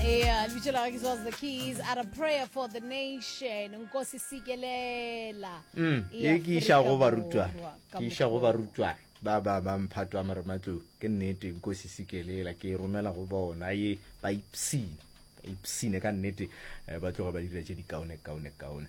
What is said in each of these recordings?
Yeah, lebitso la gagwe was the keys at a prayer for the nation nkosi sikelela mm, e ke iša go barutwana ke iša go barutwana ba ba ba mphatwa marematlou ke nnete nkosi sikelela ke e romela go bona ye ba ipsine ba ipsine ka nnete eh, ba tloga ba dira tše dikaone kaone kaone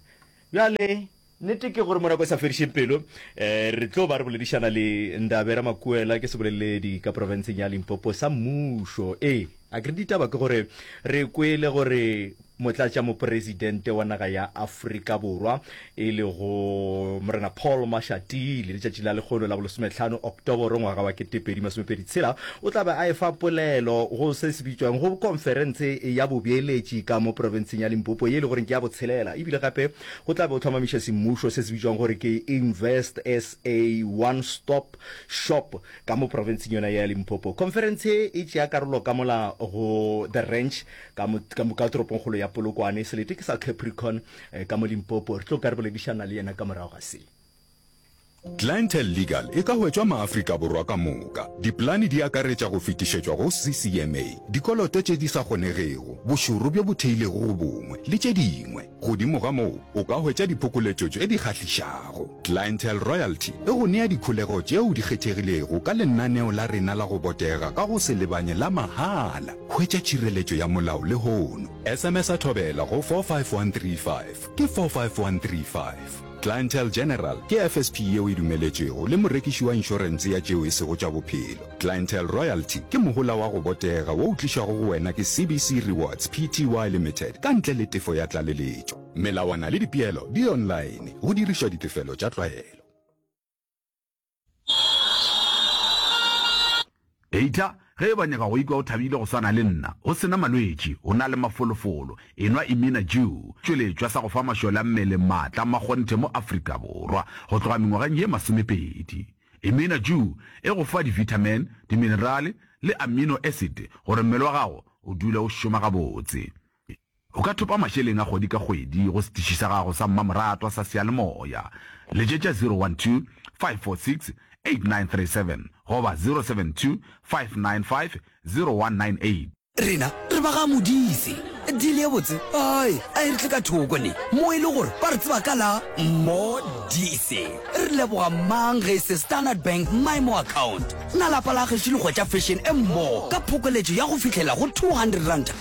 bjale Nnete ke gore mo nako e sa fedišeng pelo re tlo ba re boledišana le Ndabe Ramakuela, ke seboleledi ka profenseng ya Limpopo sa mmušo. Ee, a ke re ditaba ke gore re kwele gore motlatšamopresidente wa naga ya Afrika Borwa e lego Morena Paul Mashatile letšatši la lekgolo la bolesometlhano Oktoboro ngwaga wa ketepedi masomepedi tshela o tla be a efa polelo go se se bitšwang go konferense ya bobeeletši ka mo profenseng ya Limpopo ye e le goreng ke ya botshelela ebile gape Go tla be o hlomamiša semmušo se se bitšwago gore ke Invest SA One Stop Shop ka mo profenseng yona ya Limpopo. Khonferentshe ye e tšea karolo ka mola go The Ranch ka mo, ka mo, ka toropongkgolo ya Polokwane. Selete ke sa Capricorn ka mo Limpopo. Re tlo ka re boledišana le yena ka morago ga se. Clientele Legal e ka hwetšwa Maafrika Borwa ka moka. Dipolane di akaretša go fetišetšwa go CCMA, dikoloto tše di sa kgonegego, bošoro bjo bo theilego go bongwe, le tše dingwe. Godimo ga moo, o ka hwetša diphokoletšo tše di kgahlišago. Clientele Royalty e go nea dikholego tšeo di kgethegilego ka lenaneo la rena la go botega ka go se lebanye la mahala. Hwetša tšhireletšo ya molao lehono. SMS-a Thobela go 45135, ke 45135. Clientele General ke FSP yeo e dumeletšwego le morekiši wa inšorentse ya tšeo e sego tša bophelo. Clientele Royalty ke mohola wa go botega wo o tlišwago go wena ke CBC Rewards Pty Limited ka ntle le tefo ya tlaleletšo. Melawana le dipeelo di online go dirišwa ditefelo tša tlwaelo. Eitla ge e banyega go ikwa o thabile go swana le nna, go sena malwetši, o na le mafolofolo, enwa Imina Jew, tšweletšwa sa go fa mašole a mmele maatla a makgonthe mo Afrika Borwa go tloga mengwageng ye masomepedi. Imina Jew e go fa divitamin, diminerale le amino acid gore mmele wa gago o dule o šoma gabotse. O ka thopa mašeleng a kgwedi ka kgwedi go setiši sa gago sa mmamoratwa sa seyalemoya. Letšetša 012-546-8937 goba 072-595-0198. Rena re ba ga Modise. Deal ye botse ai a e re tle ka thoko ne mo e le gore ba re tseba ka la Modise. Re leboga mang ge e se Standard Bank Maimo Account. Na lapa la gešo le hwetša fashion e mmogo ka phokoletšo ya go fihlela go R200.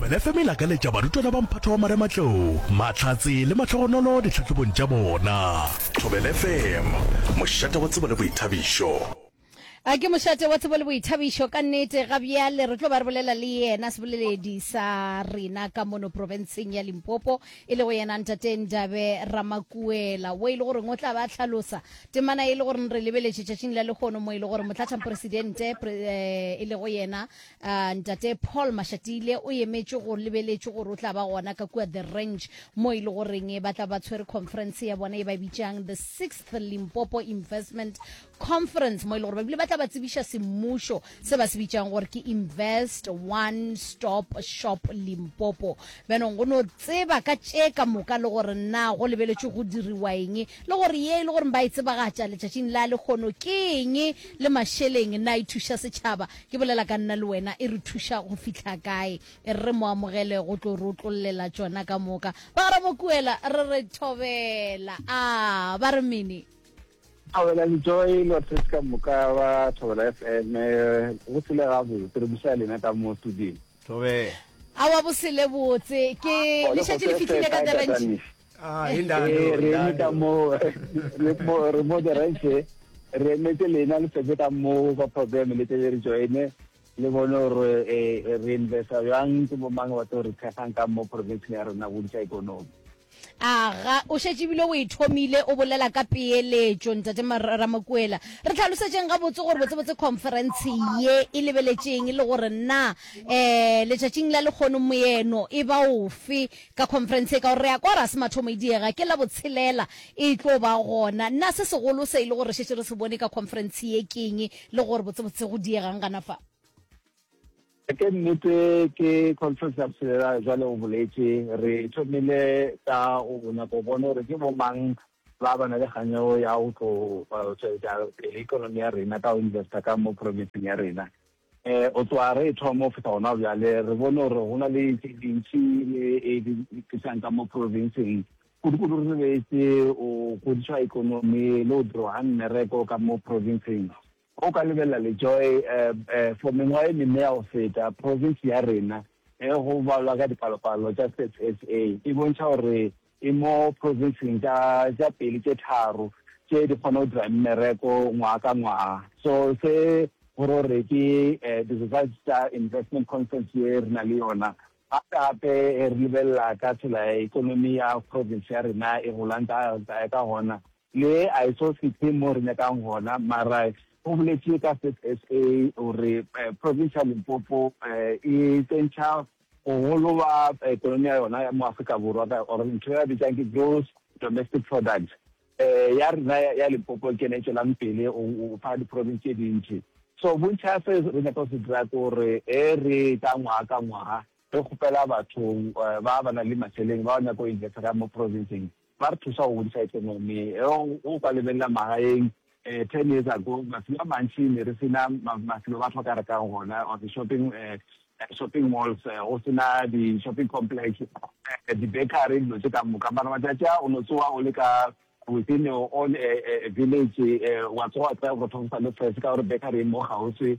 Thobela FM e lakaletša barutwana ba mphato wa marematlou mahlatse le mahlogonolo ditlhahlobong tša bona. Thobela FM, mošate wa tsebo le boithabišo. A ke mošate wa tsebo le boithabišo ka nnete ga bjale re tlo ba re bolela le yena seboleledi sa rena ka mono profenseng ya limpopo e le go yena ntate ndabe ramakuela wo e le goreng o tla ba tlhalosa temana e le goreng re lebeletše tšatšing la lekgono mo e le gore motlatšhamporesidente eh, e le go yena Uh, ntate paul mashatile o emetše go lebeletše gore o tla ba gona ka kua the range mo e le goreng ba tla ba tshwere conference ya bona e ba bitšang the sixth limpopo investment conference mo e le gore ba bile ba tla ba tsebiša semmušo se ba se bitšang gore ke invest one stop shop limpopo benong go no tseba ka tše ka moka le gore na go lebeletše go diriwa eng le gore ye e le gore ba e tsebagatša letšatšing la lekgono ke eng le mašeleng na e thuša setšhaba Ke bolela ka nna le wena e re thuša go fihla kae? E re mo amogele go tlo re otlollela tšona ka moka. Ba re Mokuela re re thobela. A ba re mini? Thobela le Joy lo tres ka moka ba Thobela FM go sele ga botse re busa lena ka mo studio. Thobela. Awa bosele botse ke lešatši le fihlile ka Durban. Ah, eh, re eme ka moo re mo the rest eh. re emetse lena le setse ka moo ka program le tele re joine le bone gore eh, re investa jang ke bo mang batho re thekgang ka mo province ya rona go disa ikonomi aga o šetše ebile o e thomile o bolela ka peeletšo ntate ramakuela re tlhalosetšeng gabotse gore botsebotse conference ye e lebeletšeng le gore na um letšatšing la lekgono moeno e ba ofe Ka khonferense e ka gore re a kwa ra se mathomo e diega, ke la botshelela e tlo ba gona. Na se segolo se e le gore re šetše re se bone ka khonferense ye ke'ng le gore botsebotse go diega'ng gana fa? Ke nnete ke khonferense ya botshelela, jwale o boletše. Re thomile ka go nyaka go bona gore ke bomang ba ba na le kganyo ya go tlo tšwetša pele ekonomi ya rena ka go investa ka mo profenseng ya rena. O tsoa re ethwa mo feta gona bjale, re bone gore go na le tše dintši le e di tlisang ka mo provinseng. Kudu-kudu re lebetše go godišwa ekonomi le go dirwa ga mmereko ka mo provinseng. O ka lebelela le Joy, for mengwaga e mene ya go feta, provinse ya rena, go balwa ka dipalopalo tša Stats SA, e bontšha gore e mo provinseng tša tša pele tše tharo tše di kgona go dira mmereko ngwaga ka ngwaga. So se go ro re ke eh, di-results tša investment conference ye re na le yona gape-gape e re lebelela ka tsela ya ekonomi ya province ya rena e golang ka ka ka gona le a e so fitlhe mo re nyakang gona mara o boletše ka state sa gore eh, province ya limpopo eh, e tsentšha Bogolo ba ekonomi ya yona ya mo Afrika Borwa ka or ntho e ba bitsang ke gross domestic product. Ya rena ya Limpopo ke yona e tšwelang pele go fa di-province tše dintši. So bontši ga se re nyaka go se dira ke gore ge re ka ngwaga ka ngwaga re kgopela bathong ba ba nang le mašeleng ba ba nyaka go investa ka mo province-ng, Ba re thusa go godisa ekonomi. Ge o ka lebelela magaeng, ten years ago, mafelo a mantši ne re se na mafelo a batho ba ka rekang gona or di-shopping shopping malls, go se na di-shopping complex, di-bakery, dilo tše ka moka. Mara matšatši a, o no tsoga o le ka within your own village, wa tsoga wa kry-a borotho bo sa le fresh ka gore bakery e mo kgauswi.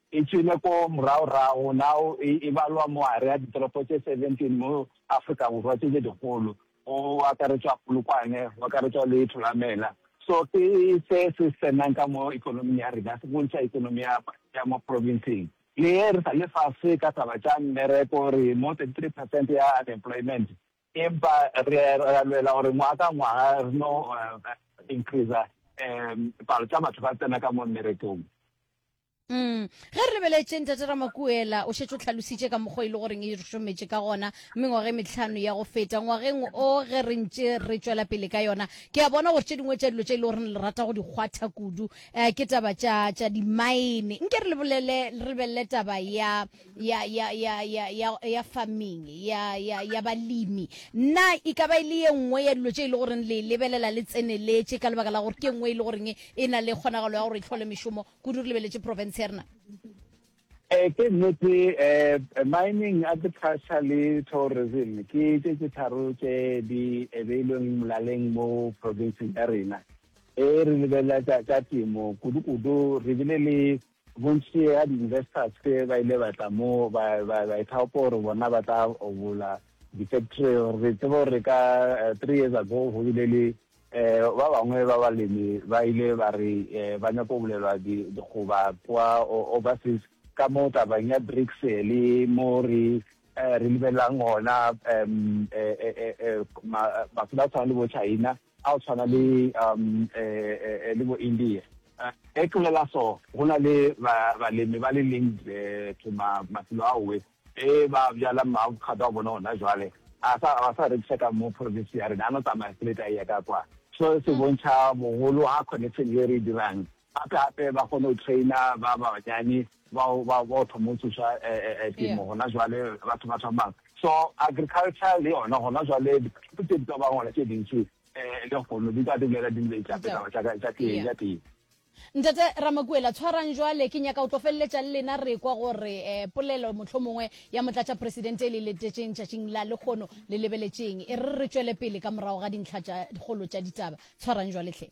E tšwele ko morago-rago, nao e, e balwa moare ya ditoropo tše 17 mo Afrika Borwa tše, tše dikgolo, go akaretšwa Polokwane, go akaretšwa le Thulamela. So ke se se tsenang ka mo ekonoming ya rena, se bontšha ekonomi ya, ya mo provinseng. Le ge re sa le fase ka taba tša mmereko, re mo 33 percent ya unemployment, empa re, re a lwela gore ngwaga ka ngwaga re no increaser um palo tša batho ba tsena ka mo mmerekong. Mm. ge re lebeletše ntate ramakuela o šetše o tlhalositše ka mokgwa e le goreng e re šometše ka gona mengwageng metlhano ya go feta ngwageng o ge re ntše re tšwela pele ka yona ke a bona gore tše dingwe tša dilo tše e le gore le rata go di kgwatha kudu um ke taba tša tša dimaene nke re lebolele re lebelele taba ya ya ya ya ya ya ya farming ya ya ya balemi nna e ka ba e le ye nngwe ya dilo tše e le goreng le lebelela le tseneletše ka lebaka la gore ke nngwe e le goreng e na le kgonagalo ya gore e tlhole mešomo kudu re lebeletše profense ya rena Eh, ke nnete eh, mining agriculture le tourism ke tse tse tharo tse di ebeilweng molaleng mo provinceng ya rena e re lebelela ka temo kudu-kudu re bile le bontši ya di-investors ke ba ile batla mo ba ithaopa gore bona ba tla obola di-factory re tseba gore ka eh, three years ago go bile le Ba bangwe ba balemi ba ile ba re ba nyaka go bulelwa dikgoba kwa overseas ka mo tabeng ya BRICS le mo re lebelelang gona mafelo a go tshwana le bo-China, a go tshwana le bo-India. Ge ke bolela so, go na le balemi ba le linked to mafelo ao. Ge ba bjala maavocado a bona gona bjale, a sa, a sa rekiša ka mo province ya rena, a no tsamaya straight a eya ka kwa. So se bontšha bogolo ga connection ye re e dirang. Gape-gape ba kgone go traina ba banyane bao ba, ba o thoma go tsoša temo gona bjale, batho ba thomang. So agriculture le yona gona bjale, diphathi tše di ka bago gona tše dintši, lehono di ka dumela di nweša ditaba tša ka, tša tee, tša tee. Ntate Ramakuela, tshwarang jwale, ke nyaka go tlo feleletša le lena re ekwa gore eh, polelo mohlomongwe ya Motlatšapresidente e le letetšeng tšatšing la lekgono le lebeletšeng, e re re tšwele pele ka morago ga dintlha tša kgolo tša ditaba. Tshwarang jwale hle.